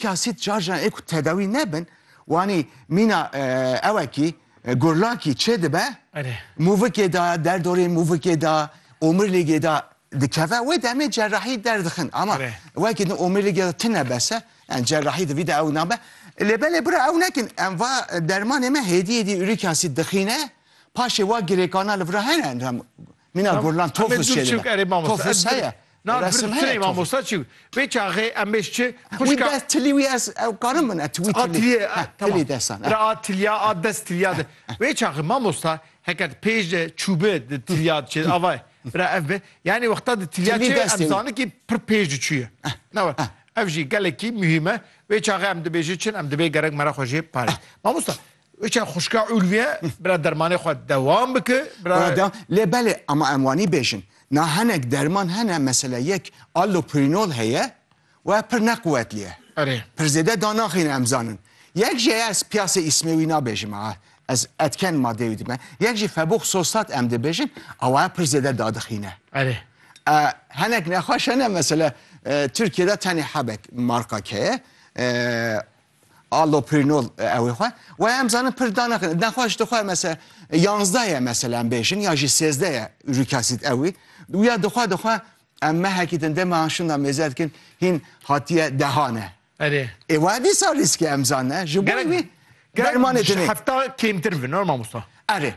Kasît şarjan ê ku tedawî nebin wanî mîna ewekî gurlakî çêdibe mûvikê de derdorê mûvikê de omîrlîgê de dikeve wê demê cerrahî derdixin ama wekî din omîrlîgê de tune bese yani cerrahî divî de ew nabe lê belê bira ew nekin em va dermanê me hêdî hêdî urîk asîd dixîne paşê wa girêkana li vira hene Mîna gurlan tofûs çêdibe. Tofûs heye. Na resim heye. Mamosta çi? Vê çaxê em bêj çi? Wî dest tilî wî ez ew karim min et wî tilî. Tilî desan. Ra a tilîya a dest tilîya de. Vê çaxê mamosta heke di pêj de çûbi di tilîya de çê ava ye. Bira ev be. Yanî wexta di tilîya çê em zani kî pir pêj de çûye. Na we. Ev jî gelekî muhîm e. Vê çaxê em dibêjin çin em dibê gerek me re xwe jê parê. Mamosta Uçe xuşka Ulviye bira dermanê xwe dewam bike. Bira lê belê ama em wanî bêjin. Na henek derman hene mesela yek allopurinol heye we pir ne quwetli ye. Erê. Pir zêde da naxîne em zanin. Yek jî ez piyasê îsmê wî nabêjim ha. Ez etken madeyê wî dime. Yek jî febûx sostat em dibêjin awaye pir zêde da dixîne. Erê. Henek nexweş hene mesela Tirkiyede tenê hebek marka keye. Alloprinol ew xwe we em zanin pir danaxin daxwa ji dixwe mese yanzda ye mesela em bêjin ya jî sêzde ye uric acid ewî ya dixwa dixwe em mehekî din dema şinda mêze dikin hîn hatiye dehane Erê. Ê wa dîsa rîskê em zanne ji bo wî dermanê dinê. Hefta kêmtir bi normal Musa. Erê.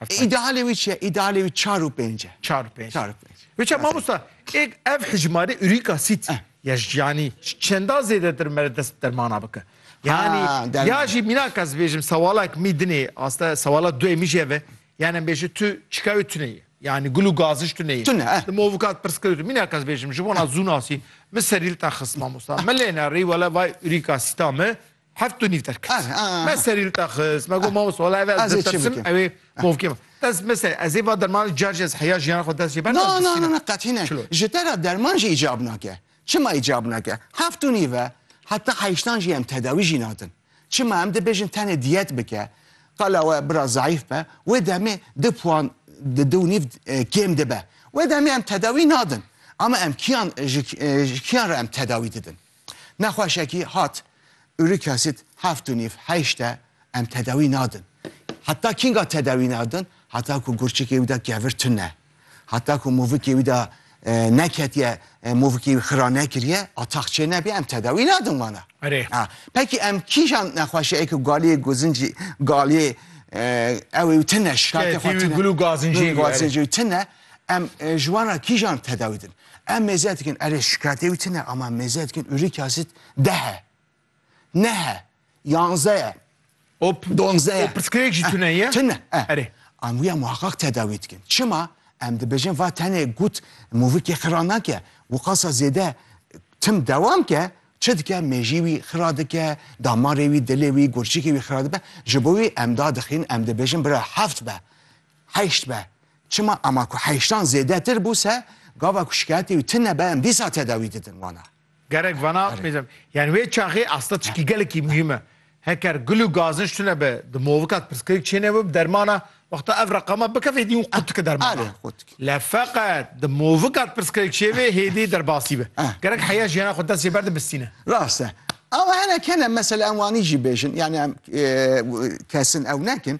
İdealê wî çi ye? İdealê wî çar û pênc e. Çar û pênc. Çar û pênc. Wê çi mamosta? Êk ev hicmarê uric acid. Ya ji yanî ji çenda zêdetir mere dest bi dermana bike. Yanî ya jî mînak ez bêjim sewalek mî dinê aste sewala duê mî jî ev e. Yanî em bêje tu çika wê tune ye. Yanî gul û gaziş tune ye. Tune e. Di movika di pirs kir tu mînak ez bêjim ji bona zûnasî min serîlta xist mamosta. Min lê ne rî wele vay urîka sîta mi Heft û nîv derket. Me serî li te xist, me got mamoste wala ev ez ditirsim ew ê movkê min. Ez mesela ez ê va derman car jî ez heya jiyana xwe dest jê berdim? Na na na na qetî ne. Ji te re derman jî îcab nake. Çima îcab nake? Heft û nîv e, heta heştan jî em tedawî jî nadin. Çima em dibêjin tenê diyet bike. Qala we bira zayîf be, wê demê du puan di du û nîv kêm dibe. Wê demê em tedawî nadin. Ama em kîyan ji kîyan re em tedawî didin? Nexweşekî hat, uric acid heft û nîv, heşt e, em tedawî nadin. Heta kînga tedawî nadin? Heta ku gurçikê wî de kevir tune e. Heta ku movikê wî de neketiye, movikê wî xira nekiriye, ataq çênebiye em tedawî nadin wan e. Erê. A, pekî em kîjan nexweşeyeke galiyê guzincî galiyê ew ê wî tune, şikayetê xwe tune. Şikayetê wî gul û gazincê wî, erê. Gazincê wî tune, em ji wan re kîjan tedawî din? Em mêze dikin erê şikayetê wî tine ama mêze dikin ûrî kasit dehe. Nehe. Yanzeye. O donzeye. O pirsgirêk jî tune ye? Tune. Erê. Em wîya muhaqqaq tedawî dikin. Çima? Em dibêjin va tenê gut mûvikê xira nake. Wiqasa zêde tim dewam ke çi dike mêjî wî xira dike, damarê wî, dilê wî, gurçikê wî xira dibe. Ji bo wî em da dixin em dibêjin bira heft be. Heşt be. Çima ema ku heştan zêdetir bû se gava ku şikayetê wî tune be em dîsa tedawî didin wana. Gerek vana mêzem. Yani wê çaxê asta çikî gelekî muhîm e. Heker gul û gazinç tune be di movika di pirsgirêk çêne bû bi dermana wexta ev reqama bike vê dî û qutike dermana. Le feqet di movika di pirsgirêk çêvê hêdî derbasî be. Gerek heya jiyana xwe destê berde bistîne. Rast e. Ama hinek hene mesela em wanî jî bêjin yani em kesin ew nekin.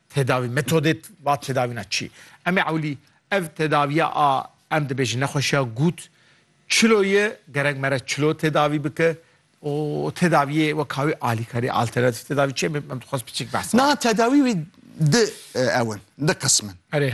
Tedavî metodê va tedavîna çi? Em ê ewlî ev tedaviya a em dibêjin nexweşiya gut çilo ye gerek mere çilo tedavî bike û tedaviyê weka wî alîkarî alternatîf tedavî çi em em dixwest biçik behs. Na tedavî wî di ewin di qismin. Erê.